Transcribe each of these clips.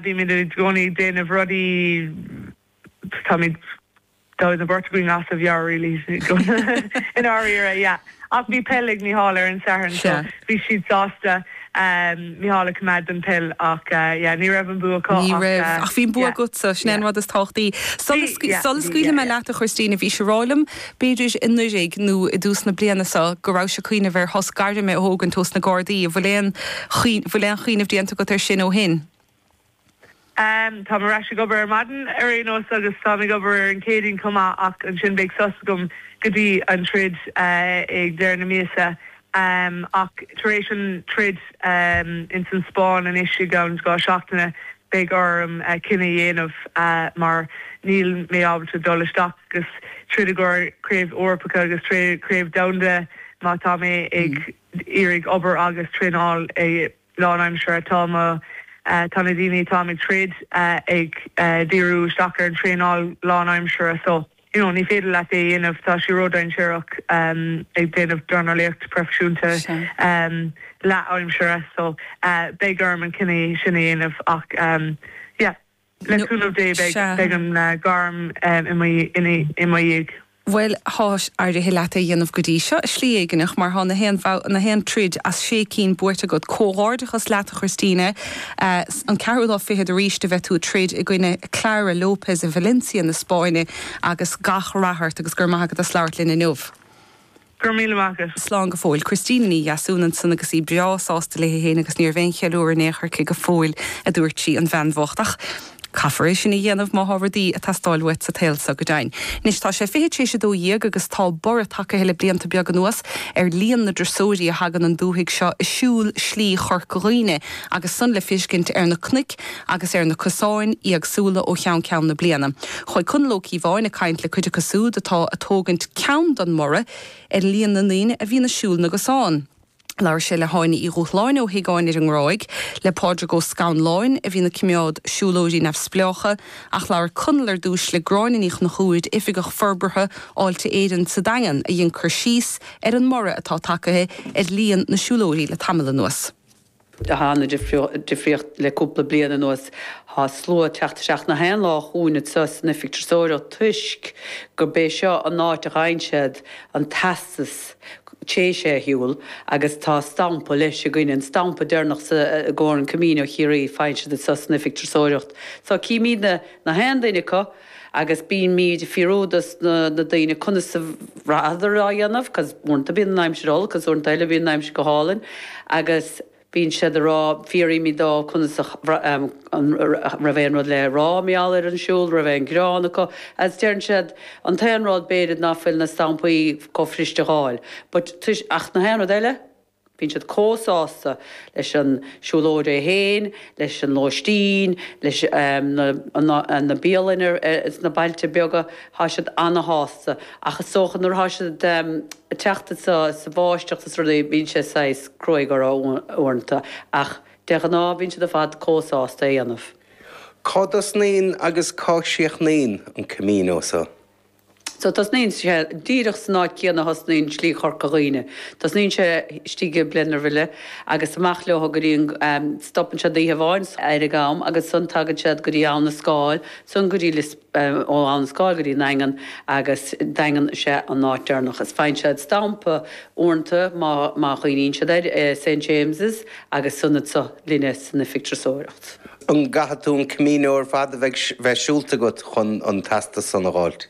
Bímid i gcónaí ag déanamh rudaí, táimid, that was a Beirt againn as a mheabhair really i ndáiríre yeah ach bhí peil ag Mícheál ar an Satharn so bhí siad sásta Mícheál a choimeád don peil ach yeah ní raibh an bua acu Ní raibh ach yeah bhí an bua agatsa, sin é an rud is tábhachtaí. Bhí, yeah, Sula scaoilfidh mé leat a Christina, bhís ag rá liom B'fhéidir anuiridh nó i dtús na bliana so go rabhais a' cuimhneamh ar shos gairme a thógaint ós na Gardaí. An bhfuil aon, bhfuil aon chuimhneamh déanta agat ar sin ó shin? Em, táim ar ais ag obair ar maidin ar aon nós agus táim ag obair ar an Chéadaoin chomh maith ach ansin beidh sos agam go dtí an troid, eh, ag deireadh na míosa. Um ach tar éis an troid um ins an Spáinn anois i gceann dhá sheachtain beidh orm cinneadh a dhéanamh uh mar níl mé ábalta dul isteach agus troid i gcomhair craobh Eorpacha agus craobh domhanda má tá mé ag iarraidh obair agus traenáil go lánaimseartha. Tá mo uh tá na daoine atáim ag troid uh ag uh díriú isteach ar an traenáil lánaimseartha so. you know ní féidir leat é a dhéanamh tá sé ródhainséarach ag déanamh dornálaíocht proifisiúnta leathaimsire so beidh orm an cinneadh sin a dhéanamh ach yeah le cúnamh Dé beidh an ghairm im dhiaidh. Bhuel tá éirithe leat é a dhéanamh go dtí seo, i slí éigin, ach mar tá na haon troid as sé cinn buaite agat, comhghairdeachas leat a Christina. an ceathrú lá fichead arís a bheidh tú ag troid i gcoinne Clara Lopez i Valencia na Spáinne agus gach rath ort agus go raibh maith agat as labhairt linn inniu. Go raibh míle maith agat. Slán go fóill. Christina Ní Dheasúin ansan agus í breá sásta léi féin agus níorbh aon cheiliúradh in aon chor aici go fóill, a dúirt sí, an bhean bhocht. Ach caithfear é sin a dhéanamh má tá rudaí ag teastáil uait sa tsaol seo go deimhin. Anois tá sé fiche tar éis a dó dhéag agus tá borradh tagtha le blianta beaga anuas ar líon na dturasóirí a thagann an dúthaigh seo ag siúl Slí Chorca Dhuibhne. agus san le fiscint ar na cnoic agus ar na cosáin éagsúla ó cheann ceann na bliana. Chuaidh Conall Ó Cíobháin ag caint le cuid acu súd atá ag tógaint ceann don mborradh ar líon na ndaoine a bhíonn ag siúl na gcosán. Labhair sé le hÁine Uí Dhúshláin ó Thigh Áine ar an nGráig, le Pádraig Ó Scanláin, a bhíonn ag coimeád siúlóirí neamhspleácha, ach labhair Conall ar dtúis le Gráinne Ní Chonchúir, Oifigeach Forbartha Fháilte Éireann sa Daingean, a dhein cur síos ar an mborradh atá tagtha ar líon na siúlóirí le tamall anuas. Tá ana-dhifríocht le cúpla bliain anuas. Tá slua ag teacht isteach na haon lá chugainn anseo san oifig turasóireacht toisc gurb é seo an áit a gheibheann siad an teastas tar éis é a shiúl agus tá stampa leis againn, an stampa deireanach i gcomhair an Camino Chiarraí, faigheann siad é anseo san oifig turasóireacht. So címíd na haon duine acu. agus bímíd ag fiafraí dos na daoine conas a bhraitheadar á dhéanamh cause uaireanta bíonn an aimsir olc cause uaireanta eile bíonn an aimsir go hálainn agus bíonn siad a' rá, fiaraímid dóibh conas a an raibh aon rud le rá mar gheall ar an siúl, raibh aon ghearán acu agus deireann siad an t-aon rud b'fhéidir ná fuil na stampaí comh fuiriste a dh'fháil but ach na haon rud eile? Bíonn siad comh sásta leis an siúlóid é féin, leis an lóistín, leis na bialanna sna bailte beaga, tá siad ana-shásta. Ach is dócha nuair atá siad ag teacht anso sa bháisteach is rudaí, bíonn sé saghas cruaidh orthu uaireanta. Ach de ghnáth bíonn siad ar fad comh sásta é a dhéanamh. Cá dtosnaíonn agus cá gcríochnaíonn an Camino so? So tosnaíonn sé díreach san áit céanna a thosnaíonn Slí Chorca Dhuibhne. Tosnaíonn sé istigh i mBlennerville agus amach leo go dtí an, stopann siad oíche amháin ar an gCam agus san tagann siad go dtí Abhainn an Scáil, san go dtí Lios, ó Abhainn an Scáil go dtí an Daingean agus Daingean is ea an áit deireanach. Is faigheann siad stampa uaireanta má, má chuimhníonn siad air, i St. James's agus san anso linne san oifig turasóireachta. An gcaithfidh tú an Camino ar fad a bheith siúlta agat chun an teastas san a dh'fháilt?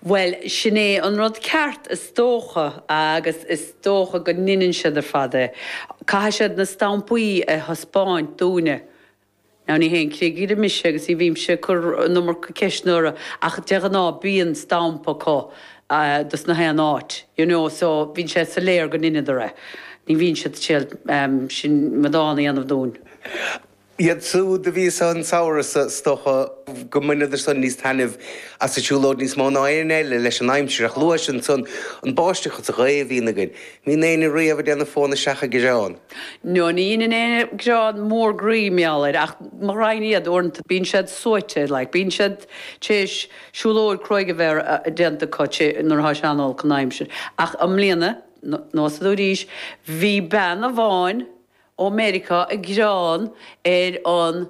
Bhuel, sin é an rud ceart, is dócha, agus is dócha go ndeineann siad ar fad é. Caithfidh siad na stampaí a thaispeáint dúinne. Now, ní haon chigire mise agus ní bhímse ag cur an iomarca ceisteanna orthu ach de ghnáth bíonn stampa acu dos na haon áit, you know, so bíonn sé soiléir go ndeineadar é. Ní bhíonn siad ag triail aon amadán a dhéanamh dúinn. Iad siúd a bhí anso an samhradh so, is dócha go mbaineadar san níos taitneamh as an siúlóid níos mó ná éinne eile leis an aimsir, ach luais ansan an bháisteach is an ghaoth a bhíonn againn, ní bhíonn éinne riamh ag déanamh fón isteach ag gearán. No, ní dheineann éinne gearán mór groí mar gheall air, ach mo ghraidhin iad, uaireanta bíonn siad suaite, like, bíonn siad tar éis siúlóid cruaidh a bheith déanta acu, nuair atá sé an-olc an aimsir. Ach i mbliana. Now, san arís, bhí bean amháin ó Mheiriceá ag gearán ar an.